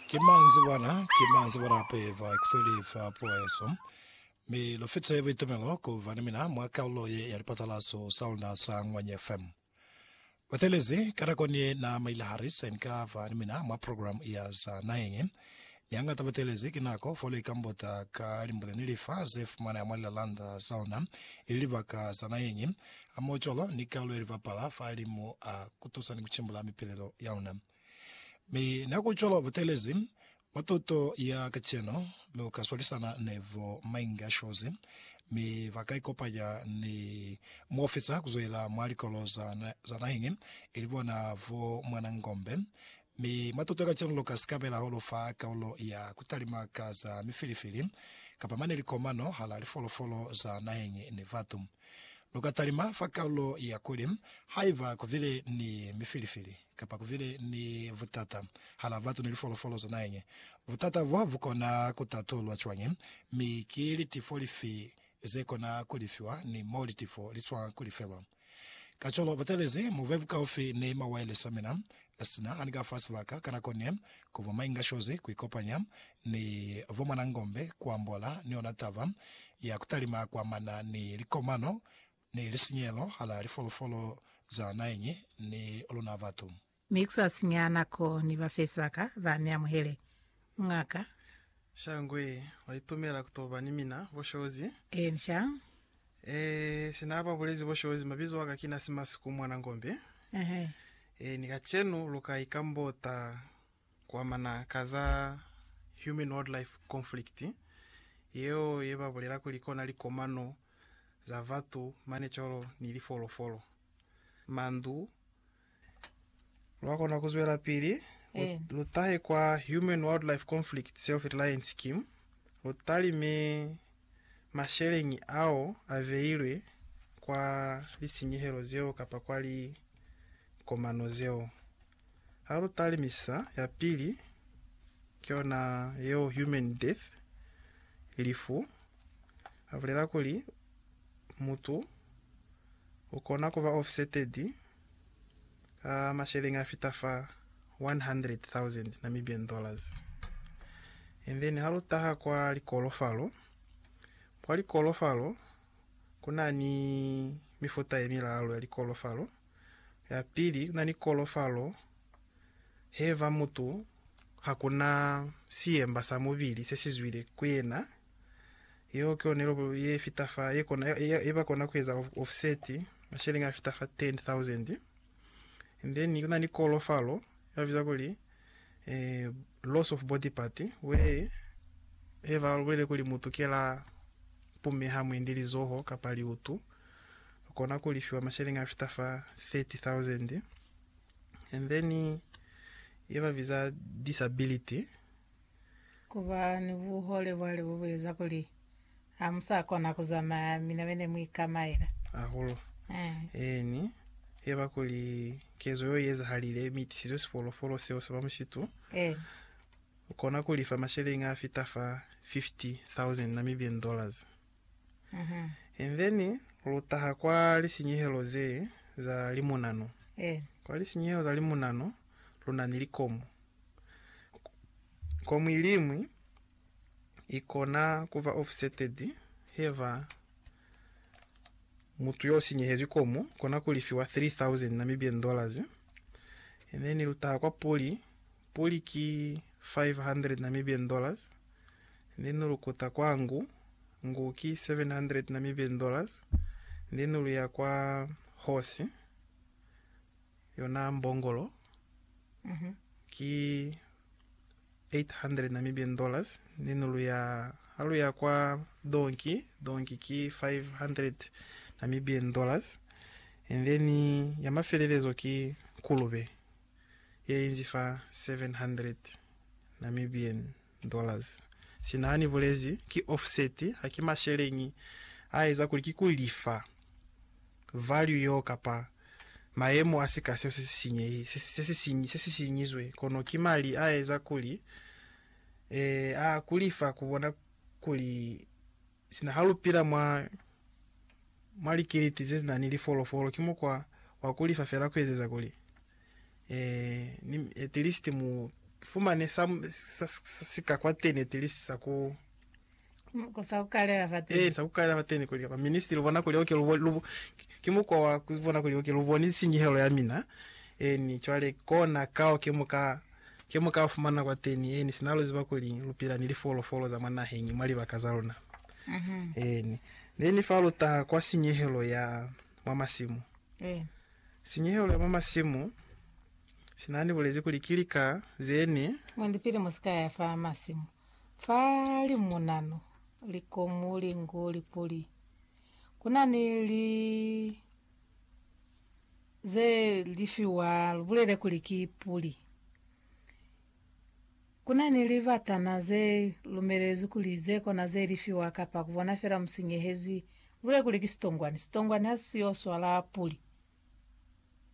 Ki manzibwana, ki manzibwana a peva ikutweli fa poeso, mi lu fitise buitumelo ku ba ni mina mwa kalulo ye ya lipatalaso sa luna sa Ngwanye FM. Batelezi ka nako ni ye na maile hari se ni ka ba ni mina mwa program ya za naheñi, mi hangata batelezi ki nako fo lu ikambota ka limbule ni lifa ze fumaneha mwa lilalanda za luna ili libaka za naheñi, hamoho cwalo ni kalulo ye li bapala fa limu a ku tusa ni ku cimbula mipilelo ya luna. Mi Na ku cwalo butelezi, mwa tuto ya kacenu, lu ka swalisana ni bo Ming a shozi, mi ba ka ikopanya ni muofisa ku zwela mwa likolo za, za nahiñi, ili bona bo Mwana Ngombe. Mi mwa tuto ya kacenu lu ka sikabela ho lu fa kaulo ya ku talima ka za mifilifili, kapa mane likomano hala lifolofolo za nahiñi ni batu. Lu ka talima fa kalulo ya kuli, Haiba ku bile ni mifilifili kapa ku bile ni butata hala batu ni lifolofolo za naheñi, butata bo bu kona ku tatulwa cwañi, mi ki litifo lifi ze kona ku lifiwa ni mo litifo li swa ku lifelwa? Kacwalo, butelezi mu be bukaufi ni mawailesi a mina Sina ani ka fa sibaka ka nako ne ku ba mainga shozi ku ikopanya ni bo mwanangombe ku ambola ni ona taba ya ku talima kwa mana ni likomano ni lisinyelo hala lifolofolo za naeñi ni luna batu. Mi ku sa sinya nako ni ba fe sibaka ba mi amuhele Ngaka. Shangwe wa itumela ku to ba ni mina, bo Shozi. Encia. Ee, sina ba bulezi bo Shozi, mabizo aka kina Simasiku mwana Ngombe. Ehe. Ee, ni kacenu lu ka ikambota ku amana ka za human-wildlife conflict, yeo ye ba bulela kuli kona likomano za batu mane cwalo ni lifolofolo, mandu, Lwa kona ku zwelapili lu, Eh. lu tahe kwa Human Wildlife Conflict Self-Reliance Scheme, lu talime masheleñi ao a beilwe kwa lisinyehelo zeo kapa kwa likomano zeo. Ha lu talimisa, ya pili ki yona yeo, human death, lifu. A bulela kuli, mutu u kona ku ba offseted ka masheleñi a fita fa 100,000 Namibian dollars. And then ha lu taha kwa likolofalo, kwa likolofalo ku na ni mifuta ye milalu ya likolofalo. Ya pili, ku na ni kolofalo he ba mutu ha ku na siemba sa mubili se si zwile ku yena Yeo ki yona ilobo ye fita fa ye kona ye ba kona ku eza offset masheleñi a fita fa 10,000. And then kuna ni kolo falo ya biza kuli eh, loss of body part we he ba bulele kuli mutu ke la pumeha mwendi lizoho kapa liutu kona ku lifiwa masheleñi a fita fa 30,000. And then ye ba biza disability Ku ba ni buhole bwa lebo bu eza kuli ha mu sa kona ku zamaya mi na be ne mu ikamaela. Hahulu. Eeni, ki heba kuli kezo yeo i ezahalile, mi i tisizwe sifolofolo seo sa ba mushitu. U kona ku lifa masheleñi a fita fa 50,000 Namibian dollars. And then lu taha kwa lisinyehelo ze za limunano. Kwa lisinyehelo za limunano. lu na ni likomu. Komu iliñwi i kona ku ba offsetted heba mutu yo sinyehezwi komu kona ku lifiwa 3,000 Namibian dollars, and then lu taha kwa puli, puli ki 500 Namibian dollars, and then lu kuta kwa ngu, ngu ki 700 Namibian dollars, and then lu ya kwa horse, Yona mbongolo ki $800 Namibian ni nulu ya ha lu ya kwa donki, donki ki $500 Namibian and then ya mafelelezo ki nkulube ye inzi fa $700 Namibian. Dollars. Sina hani bulezi ki offset haki masheleñi a eza kuli ki ku lifa value yeo kapa mayemo a sika seo se si sinyehi, se si sinyi, se si sinyizwe, kono ki mali a eza kuli, eh, a ku lifa ku bona kuli. Sina ha lu pila mwa, mwa likiliti ze si na ni lifolofolo, ki mukwa wa ku lifa fela ku ezeza kuli, ee, ni, at least mu fumane sa, sa, sa si ka kwateni, at least sa ku, sa ku kalela fateni. Ee, sa ku kalela fateni, kuli, at minist lu bona kuli, okay, lu, lu, ki mukwa wa ku bona kuli, okay, lu boni sinyehelo ya mina, ee, ni cwale kona kao ke mu ka Ke mo ka fumana kwateni, eeni, sina lu ziba kuli lu pila ni lifolofolo za mwa naheñi mwa libaka za luna. Eeni. Neni fa lu taha kwa sinyehelo ya mwa masimu. Sinyehelo ya mwa masimu, sina ni bulezi kuli ki lika ze ni. Mwendi pili mu si ka ya fa masimu, fa limunanu, likomu, linku, lipuli, ku na ni li. Ze lifiwa lu bulele kuli ki puli. Ku na ni libatana ze lumelezwi kuli ze kona ze lifiwa kapa ku bona fela musinyehezwi. Lu bulele kuli ki sitongwani. Sitongwani ha si yo swala puli.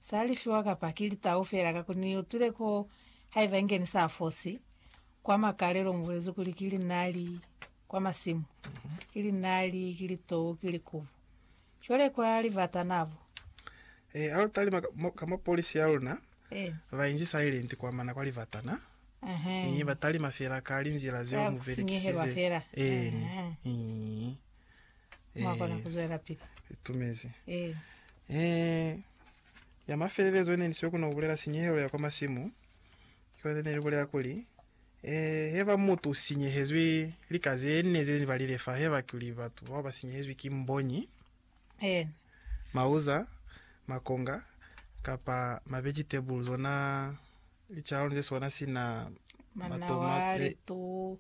Sa lifiwa kapa ki litau fela ka ku ni utwile ko haiba inge ni sa fosi kwa makalelo mu bulezwi kuli ki linali kwa masimu, ki linali, ki litou, ki likubu. Cwale kwa libata na bu. E, ha lu talima ka, mo, ka mo polisi ya luna E. ba inzisa ilenti kwa mana kwa libata na, Ehe. Ii, ba talima fela ka linzila zeo Ka mu kusinyehelwa belekisize. fela. Eeni. Ehe. Ii. Mwa kona ku E, zwelapili. itumezi. E. E, ya mafelelezo ine ni sio ku no bulela sinyehelo ya kwa masimu, Cwale ne libulela kuli, Ee, heba mutu u sinyehezwi lika zene ze ni balile fa, heba kuli batu bao ba sinyehezwi ki mbonyi, Eena. mauza, makonga, kapa mavegitable, zona licaloni ze sona sina Manawa, matomate, litu,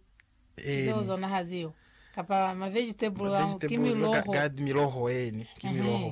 zeo eeni, zona ha ziyo. Kapa mavegitable, a, ki mavegitable, zibe ga- miloho. gad- miloho, eeni, ki Ehe. miloho.